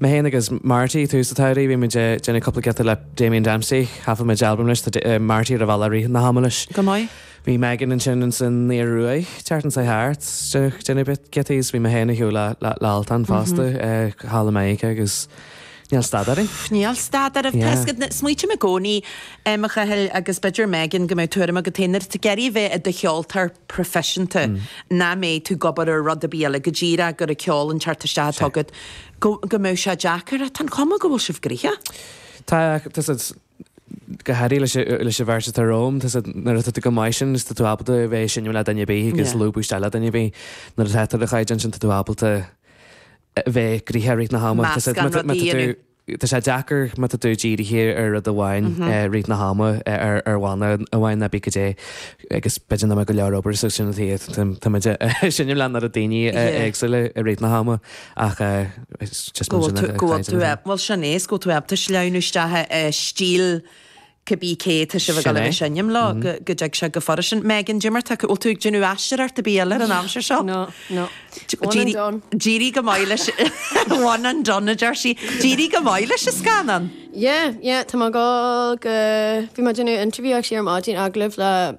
Mé féin agus Marty tús an tsamhraidh, bhí muid ag déanamh cúpla giota le Damien Dempsey, thaifead muid albam leis, tá Marty ar an bhealach i rith na hama leis. Go maith. Bhí Megan ansin in san Ioruaidh, an tseachtain seo thart, déanamh, déanamh bit giota agus bhí mé féin ar shiúl le, le, le Altan fosta, thall i Meiriceá agus níl stad orainn. Pff, níl stad oraibh, Yeah. tá a fhios agat ná, smaoitim i gcónaí, em, a Chathail agus b'fhéidir Megan go mbeidh tuairim agat féin, nuair atá tú ag iarraidh a bheith i do cheoltóir, proifisiúnta, nach mbeidh tú ag obair ar rud ar bith eile go díreach gur an ceol an teacht isteach atá agat, go mbeidh sé deacair, ach tá an chuma go bhfuil sibh gnoitheach. Tá, tá siad, go háirithe leis, leis an bheirt atá romham, tá a fhios agat, nuair atá tú go maith sin, tá tú ábalta a bheith ag seinm le duine ar bith agus lúbadh isteach le duine ar bith. Nuair atá tú ar do chaighdeán sin, tá tú ábalta a bheith gnoitheach i rith na hama. Meascán rudaí a dhéanamh. Tá sé deacair má tá tú dírithe ar rud amháin i rith na hama, ar bhanna amháin nó cibé cad é agus b'fhéidir nach mbeadh go leor obair so sin an taobh agat. Tá muid ag seinm leis an oiread daoine éagsúla i rith na hama ach it's just muid ag caint. Go bhfuil tú, bhuel sin é, is go bhfuil tú ábalta sleamhnú isteach i stíl Cibé cé atá sibh ag dul a sheinm leo go dtig sé go furasta. Megan, d'imir tú, bhfuil tú ag déanamh aisteoireacht ar bith eile ar an aimsir seo? No, no. One and done. D'éirigh go maith leis One and done, a deir sí. D'éirigh go maith leis an scannán. Yeah, yeah, tá mé ag dul go, bhí mé ag déanamh interview actually ar maidin, agallamh le,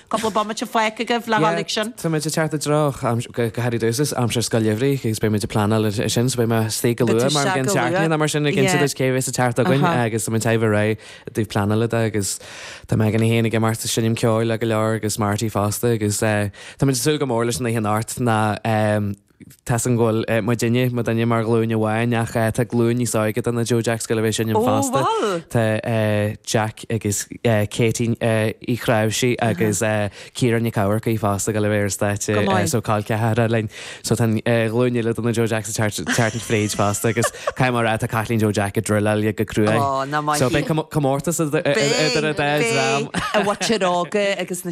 Cúpla bomaite fágtha agaibh le Yeah, h-uilig sin. táimid ag teacht i dtreo aimsir, go háirithe dtús, is aimsir scoil gheimhridh agus beimid ag pleanáil ar sin, so beidh mé istigh go Beidh tú luath mar an isteach chugainn go luath. tearclaíonn, mar sin, ag insint Yeah. duit cé a bhéas ag teacht againn Uh-huh. agus tá muid ag tabhairt aghaidh ar an taobh pleanála de agus tá Megan í féin ag imeacht ag seinm ceoil le go leor agus Marty fosta agus eh, táimid ag súil go mór leis an oíche anocht ná eh, Tá a fhios againn go bhfuil muidinne, muidinne mar ghlúin amháin, ach tá glúin níos óige de na Joe Jacks ag gabháil a bheith ansin fosta. Tá Jack agus Katie Uí Chnáimhsí agus Ciara Nic Eamharcaigh fosta ag gabháil a bheith ar an stáitse so col ceathracha linn. So tá glúin eile de na Joe Jacks ag teacht fríd fosta agus caithfidh mé a rá tá Caitlín Joe Jack ag druileáil go cruaidh. So beidh comórtas idir an dá dhream. Beidh, i bhfaitear óga agus na.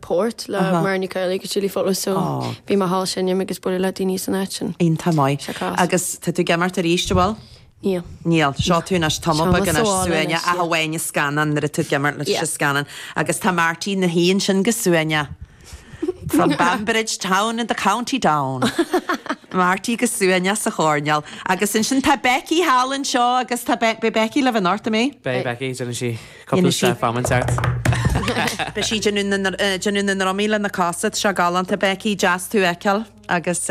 port le Mary Nic Ailí go Chilly Follow so bhí mé thall ag seinm agus ag bualadh le daoine san áit sin. Iontach maith. Sé cás. Agus tá tú ag imeacht arís, an bhfuil? Níl. Níl. So tá tú anois tamall beag níos suaimhní ach amháin i scannán nuair a tú ag imirt leis sa scannán. Agus tá Marty ina shuí ansin go suaimhneach. From Banbridge town in the county down. Marty go suaimhneach sa choirneál. Agus ansin tá Becky thall anseo agus tá Be- beidh Becky libh anocht, an mbeidh? Beidh Becky, déanann sí. Cúpla step damhsa. Beidh sí déanamh na ndrumaí le na cosa, so galánta Becky, deas tú a fheiceáil agus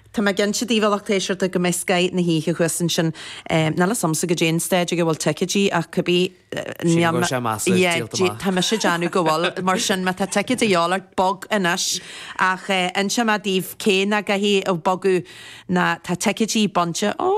tá mé cinnte daoibh a lucht éisteachta go mbeidh scoth na hoíche thuas ansin, níl a fhios agamsa cad é an staid ag a bhfuil ticeidí ach cibé Sílim go bhfuil sé maslach díolta amach. Yeah tá mise ag déanamh go bhfuil mar sin má tá ticeid a dhíth ort bog anois ach inseoidh mé daoibh cé nach gcaithfidh bogadh ná tá ticeidí bainte ó